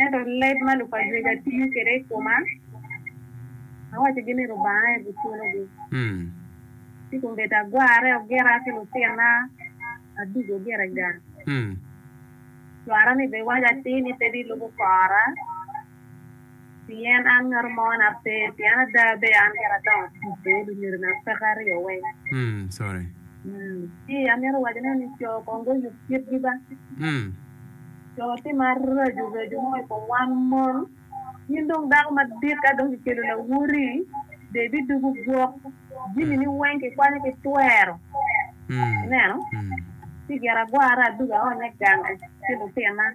Ento leb ma lukacweca tiyo kwede i koma, awacogi ni Lubanga aye guculogi. Ci kombeddi agwarre ogira ki lutinna aducu ogire gang. Cwara-ni bene waco atir ni pe bilubo kora. Pien an ngat mo na pe, pien ada bed an kit adongo tic i lunyodina peke aryo weng. Ci amito wacone ni co kong guyub kitgi ba. Co timo aracu racu mo i kom wan mon. In dong dako madit ka dong kikelo lawoti, de ibidugu gwok, jamini weng kikwanyo ki twero. Ineno? Ci gire agwara adugo aonye gang ki lutina.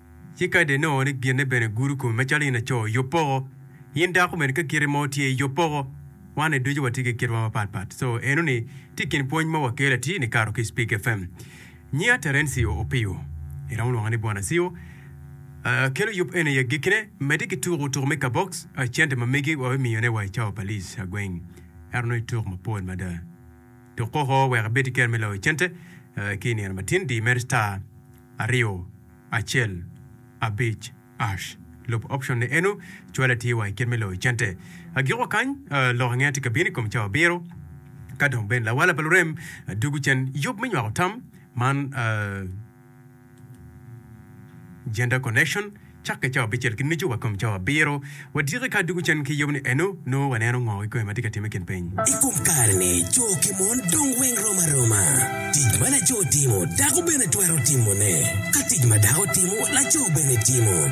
Ci kadi inongo ni ginne bene egudo komi macalo in laco, yub poko. In dako bene ka kiti mo tye, yub poko. Wanni ducu watye ki kitwa mapat pat. So, eno ni tye ikin pwony ma wakelo atir ni kato ki i Speak FM. Nyiya Terencio Opio, iromo lwonga ni Bwana Cio, kelo yub eni i agikkine. Medde ki tuko tuko me kabox, cente ma megi wabimiyo ne wa i cawa pa lic agweng. Ento nongo ituk mapol mada. Tuk koko wek ibed ki kero me loyo cente ki i nino matin, di imed star. aryo acel abic ash lub option ni eno cwale tye wa ikit me loyo cente agiko kany lok ange tye kabino ikom cawa abiro kadong bene lawala pa lurem dugu cen yub me nywako tam man gender connection Cakke cawa abicel ki nucu wa kom cawa abiro, wadyeke ka adwogo cen ki yub-ni eno, nongo waneno ngo kikome ma tye ka timme i kin piny? I kom kare-ni, co ki mon dong weng rom aroma. Tic ma laco timo, dako bene twero timone. Ka tic ma dako timo, laco bene timo.